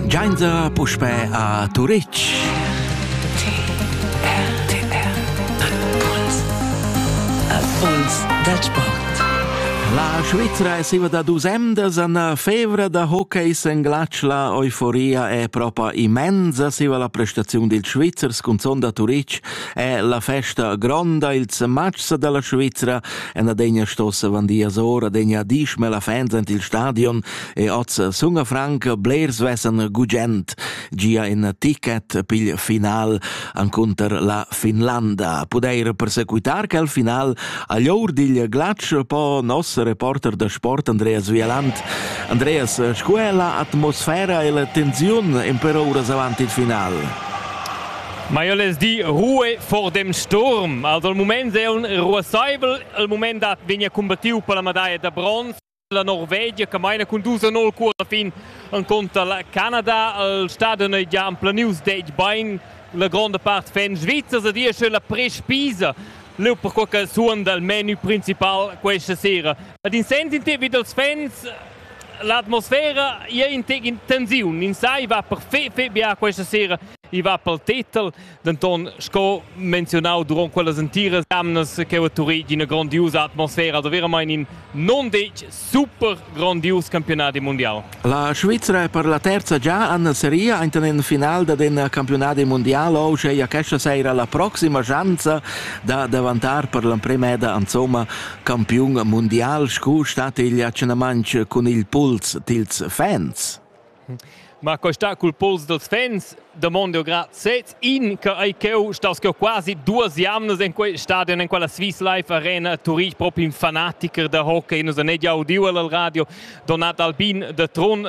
Gianza puspè a Turitg. Puls dal sport. La Svizra è siva da dus emdas an fevra da hockey senglatsch la euforia è propa immensa siva la prestaziun dil Svizzers cun sonda Turitg è la festa gronda ils matchs dalla Svizra En adegna stossa vandias ora degna dismel a fans ant il stadion e oz sunga franca blers vessen gugent gia in ticket pigl final anconter la Finlanda. Pudeir persequitar quel final a ll'or digl glatsch po nos reporter da sport Andreas Vieland. Andreas, scu è la atmosfera e la tensiun in per uras avant il final? Ma io les di Ruhe vor dem Sturm. Also il mument è un ruasaivel, il mument dat vegna combattiu per la medaglia da bronz. La Norvegia che maina con 2-0 cur alla fin contra la Canada. Il stadion è già planius dec bain. La grande part fan svizzers e dia la prespisa leu per quel che suon dal menu principal questa sera. Ad in sens in te vid els fans l'atmosfera è in tensiun, in sai va per fe, fe bia questa sera I va pel titel, denton sco menzionau duront quellas entiras jamnas che ho turì d'ina grondiusa atmosfera, da veramain in non detg super grondius campionat mundial. La Svizra è per la terza già en seria enten in final da den campionat mundial o sche questa sera la proxima schanza da davantar per l'emprima eda insomma campiun mundial scu stat igl accenamantsch cun il puls tils fans. Ma questa cul pols dels fans domando grad sez in che ei cheu staus cheu quasi duas jamnas in quei stadion in quella Swiss Life Arena Turich proprio in fanatiker da hockey nus han gia udiu al radio Donat Albin de Tron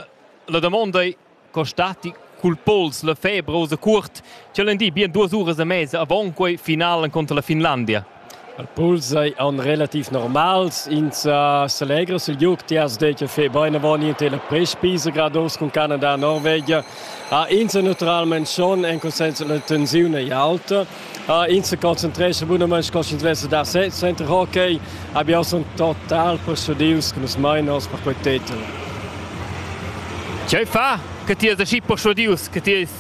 la domanda è costati cul pols la febrosa curt ce di bien duas uras e mesa avon quei final contro la Finlandia Al puls ei aunc relativ normals. Ins selegra sil giug. Ti has detg che fai bein avon ien tilla prespisa, grad uss cun Canada e Norvegia. Ah, ins è naturalment schon en consens la tensiun ei aulta. Ah, ins se concentrescha bunament sco sch'ins vess da sez center hockey. Abbiamo son total persuadius che nus mai nos per quei titel. Che fa? Che ti has aschi persuadius che ti eis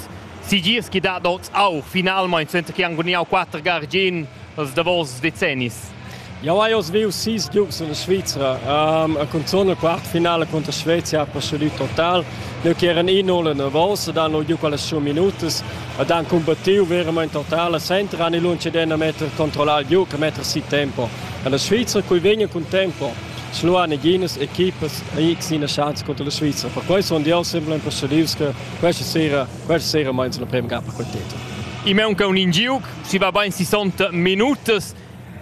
Sigirs chi dat oz aur, finalmaing senza chi han gudignau quatter gar gin els davos decennis. Jau hai oz viu sis giugs en la Svizra um, e cunzun la quartfinala contra Svezia ha procedì total. Noi che eran in all nervos ed hanno giu quelle sue minutas ed han combattiu veramente total e senza hanno lunge den a metter controllar il giug e metter si tempo. En la Svizra cui vegna con tempo sluha neginas equipas e x ina chance contro la Svizra. Per questo sono io sempre procedius che Questa sera, questa sera meins la prima gapa col teter. I manca un ingiuc, si va bain 60 minutas,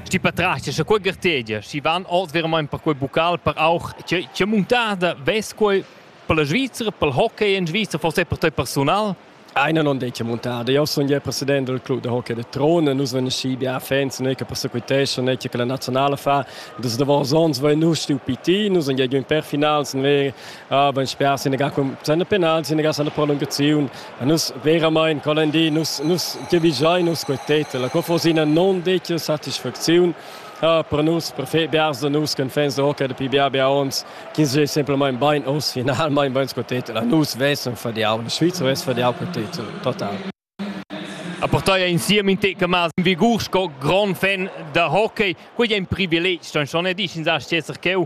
sti patrascia, scha quei gartegia, si van oz veramente per quei bucal, per auch, che, che montada ves quei per la Svizzera, per il hockey in Svizzera, forse per te personal? Einer non dice montada. Io sono il presidente del club de hockey de Trone. Nus vengono sci bia fans, noi che passo coi tescio, noi che la nazionale fa. Dus davos ons vai nus stu piti, nus andiamo in per finals, noi Ah, ben sper Senegal san la penal, Senegal san la prolungaziun. Nus veramente quella di nus nus giavigiai nus quei tet. La cofosina non dice satisfazione. Ah, per nus, per fe biars da nus che fans da hockey dapi bia bia ons, che sei semplicemente ben aus finalmente ben quei tet. La nus vessen fadiau, la Svizzera vess fadiau quei tet total. A portei insieme in te camas in vigur sco grand fan da hockey, quei è un privileg, sto schon ne dici sa esser cheu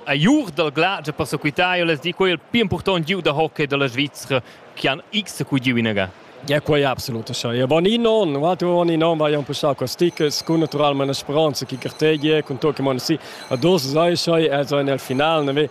a jur dal glace per sequitai les di quel più important giu da hockey della Svizzera che han x cu giu inaga. Ja, quei è absolut așa. Ja, bon in on, vatu on in on vai un po sa stickers con naturalmente una speranza che cartegge con to che man si a dos sai sai e so nel final ne ve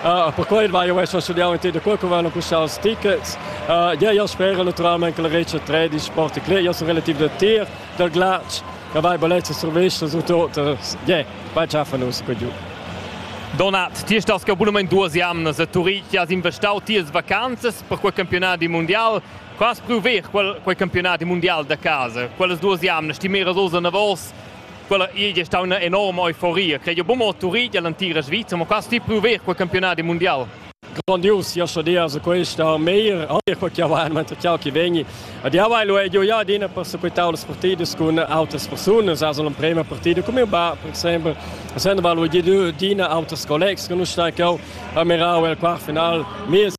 Uh, per quei vai esser studiau in da quel vanno custar els tickets. Uh, ja, io spero naturalmente che la Regia 3 di Sport Club, io sono relativ del tir, del glatsch, che vai bellezza servizio su tutto, ja, vai già fanno un po' giù. Donat, ti estás che abunament duas jamnas a Turitg, has investau tias vacanzas per quel campionat di mondial. Qua has pruver quel, quel campionat di mondial da casa, quelles duas jamnas ti meras osa navos Quella igl è stata una enorma euforia. Crei jo bumo Turi dell'antira Svizzera, ma qua sti pruver quel campionat mondial. Grandios, ja schon dias questa meir, anche quel che va man ciao che vegni. Ad ja vai lo è jo ja dina persequitau las partidas con autres personas, also la prima partita come ba per esempio, essendo va lo dina autres collegs che non sta che a mirau el quart final, mies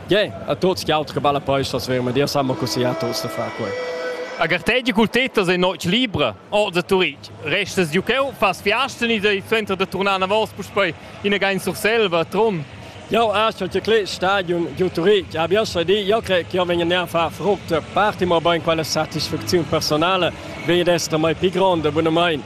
Yeah, a tutti gli altri che va la posta sverma, Dio sa così a tutti da fare qua. Agar te di cultetas e noc libra, o da turich, restas du cheu, fas fiasten in il center da tornar na vos puspei in again sur selva, Trun. Ja, acho che kle stadion ju Turich, habe ja so di, ja cre che io vengo a far frutte, parti mo ben quella satisfazione personale, vedi d'essere mai più grande, buono mein.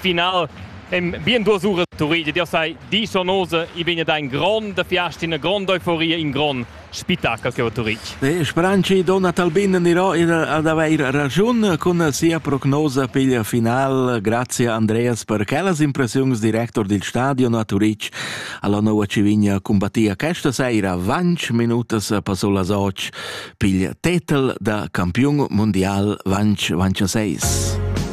Final en bien duas uras Turitg dir sei disonose i vegn da in grond fiasta una grond euforia in grond spettacolo che va Turitg Speranci donna Talbin anirò ad avair ragiun con sia prognosa per il final grazie Andreas per quellas impressioni director del stadion a Turitg alla nuova Civigna combattia questa sera 20 minutas passò las 8 pigl tetel da campion mondial 20 26